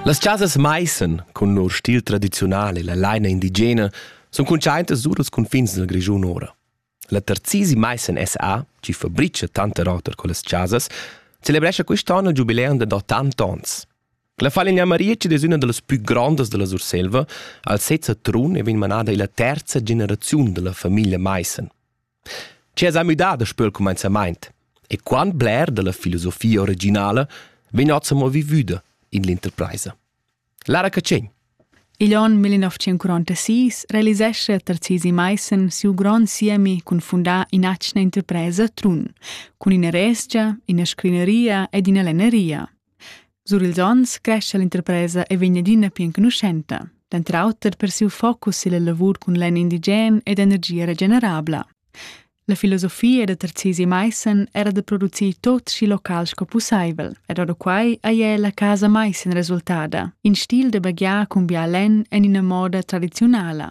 Las chasas maissen, cun lur stil tradiziunal e la laina indigena, sun cuntschaintas sur als cunfins dal Grischun ora. La terzisi maissen SA, chi fabricha tanter oter quellas chasas, celebrescha quist'on il giubileum da ottanta ons. La falegna Maria chi'd es üna da las pü grondas della Surselva, al sez a Trun e vegn manada illa terza generaziun da la famiglia maissen. Chi esa müdà daspö il cumainzamaint? E quant bler da la filosofia originala vegn hoz amo vivüda in l'interpraisa? Lara Catschegn Igl onn 1946 realisescha Tarzisi Maissen siu grond siemi cun fundar in'atgna interpresa Trun, cun ina resgia, ina scrineria ed ina lenneria. Sur ils onns crescha l'interpresa e vegn adina pli enconuschenta, denter auter per siu focus silla lavur cun lenn indigen ed energia regenerabla. La filosofia da Tarzisi Maissen era da producir tot schi local sco pusseivel ed ora quai ei è la casa Maissen resultada, in stil da baghiar cun bia lenn en ina moda tradiziunala.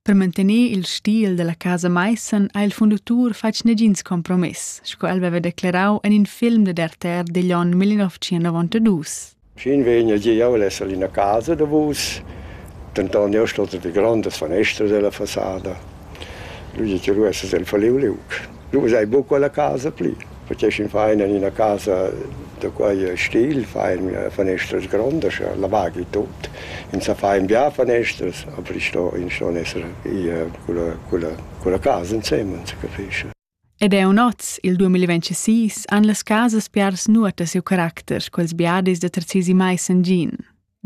Per mantener il stil dalla casa Maissen ha il fundatur fatg negins compromess, sco el veva declarau en in film dad RTR digl onn 1992. Fin vegn el gie jeu esser ina casa da vus, denton jeu sto de grondas fanestras della fasada. Lui che lu esser el falliu liug. Nu usai buca quella casa pli. Faceschin fein en ina casa da quei stil, fein fanestras grondas, lavagi tut. Ins sa fein bia fanestras, aber ins sto, ins sto esser ier culla, culla, culla casa ensemens, capisci? Ed è un oz, il 2026, han las casas piars nuota siu caracter, quels biadis da Tarzisi mai san gin.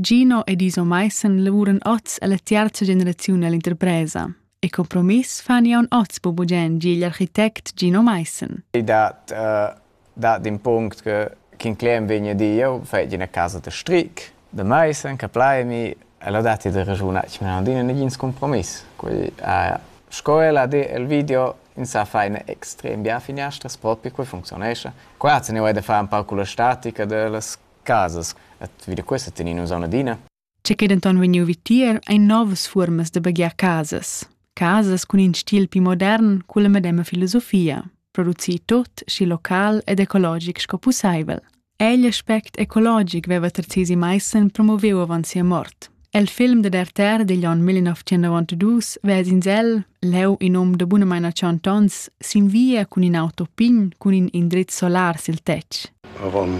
Gino ed Iso Maissen lavuran oz alla tiarza generaziun ell'interpresa. E compromiss fan jaun oz po bugen gi igl architect Gino Maissen. I dat, uh, dat in punct che Kinclem vegna di io fai ina casa de stric de Maissen che plaimi e l'ho dati de ragiuna che non dina negin compromiss. Quei uh, sco ella di el video in sa fa eine extrem bia fineastras propi qui funzionesce. Qua se ne vuoi de fare un po' con la statica de las casas et vi da questa tenin nus auna adina. C'è che denton vegniu vi tier ein novas fuormas da baghiar casas. Casas cun in stil pli modern cu la medema filosofia, producir tot schi local ed ecologic sco pusseivel. Egl aspect ecologic veva Terzesi Meissen promoveu avant sia mort. El film dad RTR digl onn 1992 ves'ins el, leu in um da bunamain 80 onns, sin via cun in auto pign cun in indriz solar sil tetg. Avon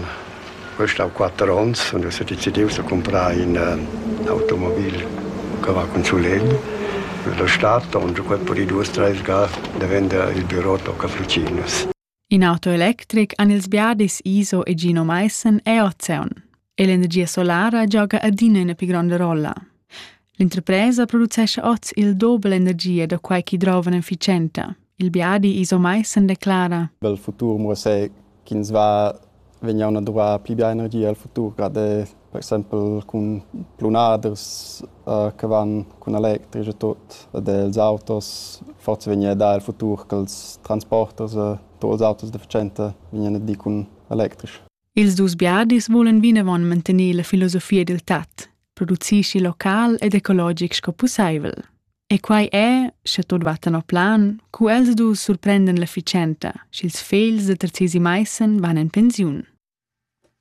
questa quatter onns und es decidius a comprar in uh, automobil che va con sulegl. La stata, und quel per i due strelga, da vender il büro Tocca Frucinus. In auto electric han ils biadis Iso e Gino Maissen e Ozeon. E l'energia solara gioga adina ina pli gronda rolla. L'interpresa producescha oz il doble energia da quai che drovan efficienta. Il biadi Iso Maissen declara: Il futur muossé ch'ins va vegn auna duvrà pli bia energia el futur, grad è per exempel cun plunaders uh, che van cun electric e tot ed els autos forse vegnia da el futur che els transporters e tots els autos deficiente vegnan a dir cun electric. Ils dus biadis volan vinavon mantener la filosofia dil tat. produceschi local ed ecologic sco pusseivel. E quai è, sche tot va tenor plan, cu els du surprenden l'efficienta, sch'ils fegls de terzesi maissen van en pensiun.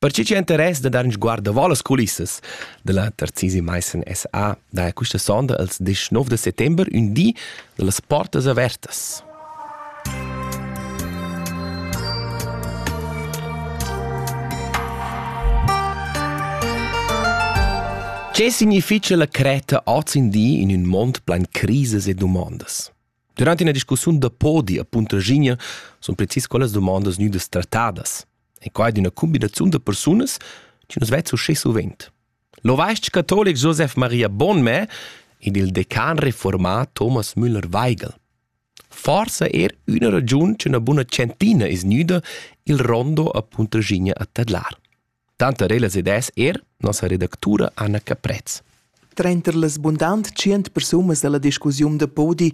Perché c'è interess da dar un sguardo va las culissas della Terzisi Meissen SA, da questa sonda els 19 de settembre un di de las portas avertas. Che significha la Creta oz in di in ün mond plain crises e dumondas? Durant ina discussiun da podi a Puntraschigna sun precis quellas dumondas gnüdas trattadas. E quai d'üna cumbinaziun da persunas chi nu's vezza uschè suvent. L'ovais-ch catolic Josef Maria Bonmè ed il decan reformà Thomas Müller-Weigel. Forsa er üna ragiun ch'üna buna tschentina es gnüda il rondo a Puntraschigna a tadlar. Tanter ellas ed es er nossa redactura Anna Caprez. Tranter las bundant tschient persunas da la discussiun da podi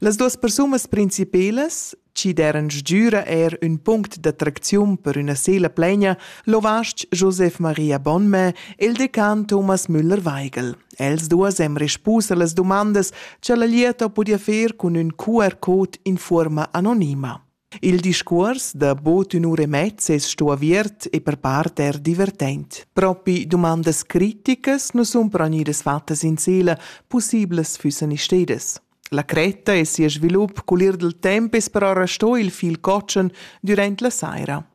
Las duas persunas principelas, chi deran sgüra eir ün punct d'attracziun per üna sela plaina, l'ovast Joseph Maria Bonmè e il decan Thomas Müller-Weigel. Els duos hem respus a las dumandas cha la lieta ho pudi fer cun ün QR-code in fuorma anonima. Il discuors da bod ün'ura e mezza es sto aviert e per part eir divertent. Propi dumandas criticas nu sun però gnüdas fattas in sela, pussiblas füssan istedas. La cretta e sia svilup cul ir dal temp es però restò il fil cotschen dürant la saira.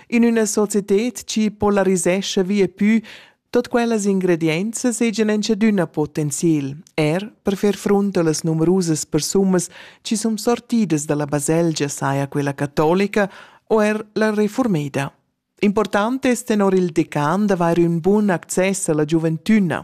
In üna societed chi polarisescha via pü tot quellas ingredienzas hegian enchadüna potenziel, er per fer frunt a las numerusas persunas chi sun sortidas da la baselgia saja quella catolica o er la reformeda. Important es tenor il decan d'avair ün bun access a la giuventüna,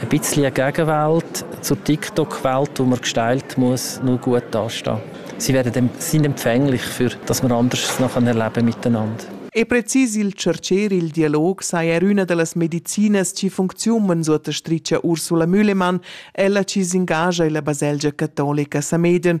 ein bisschen Gegenwelt zur TikTok-Welt, wo man gestaltet muss, nur gut dastehen. Sie werden dem, sind empfänglich für, dass man anders noch erleben miteinander. E precis il cercer il dialog saja er üna da las medicinas chi funcziunan suottastricha Ursula Mühlemann, ella chi s'ingagia illa baselgia catolica Sameden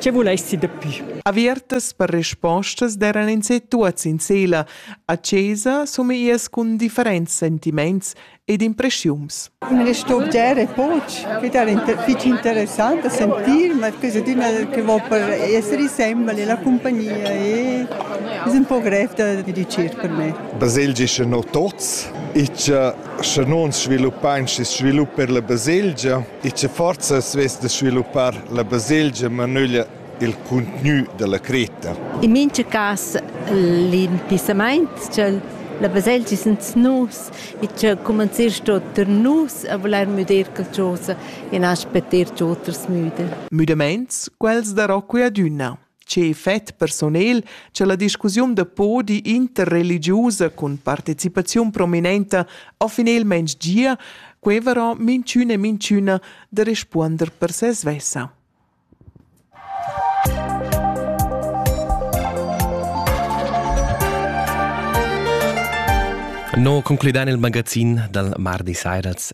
Che vulais ti dapi? Avertas per respostas d'eran ins e tuots in sela a chesa somiias cun differents sentiments ed impreschiums. Una istorgia è poch, che era fitg interessant da sentir, ma cosa d'una che vo per essere sembra la compagnia e es un po grev da dirigir per me. Baselgia sche no tots, ich sche non sviluppain schi svilupp per la baselgia. e che forza svess da sviluppar la baselgia manöglia il cuntgnü da la cretta. In mincha cas l'intizzamaint cha la baselgia sens nus e cha cumanzist oter nus a voler müder qualchosa e na spetter ch'oters müder. Müdamaints, quels darò que adüna. Tge effect personel che la discussiun da podi interreligiusa cun participaziun prominenta ha finalmein gia, quei varà minchüna e minchüna da respuonder per se svessa. No concludan il magazin dal mardi sairas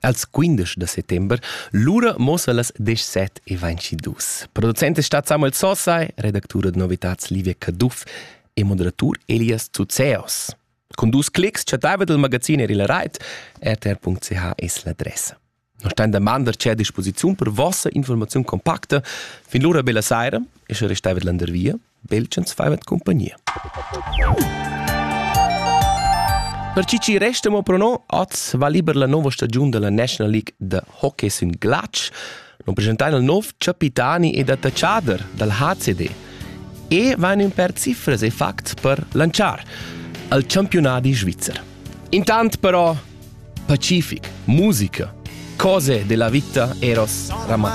als 15 de settember. Lura mossa las 17 e vainci dus. Producent è stat Samuel Sossai, redactur da novitats Livia Caduff e moderatur Elias Zuzeos. Con dus clics chattava dal magazin er il rait, rtr.ch es l'adressa. Non stan da mandar c'è a disposiziun per vossa informazione compacta fin l'ora bella saira, e se restava landervia, Belchens faivat compagnia. Per chi ci resta mo pro no, oz va liber la nova stagiun della National League de hockey sün glatsch. Non presentain il nov capitani ed attacciader dal HCD. E van un per cifras e facts per lanciar al campionati svizzer. Intant però Pacific, musica, cose della vita eros ramat.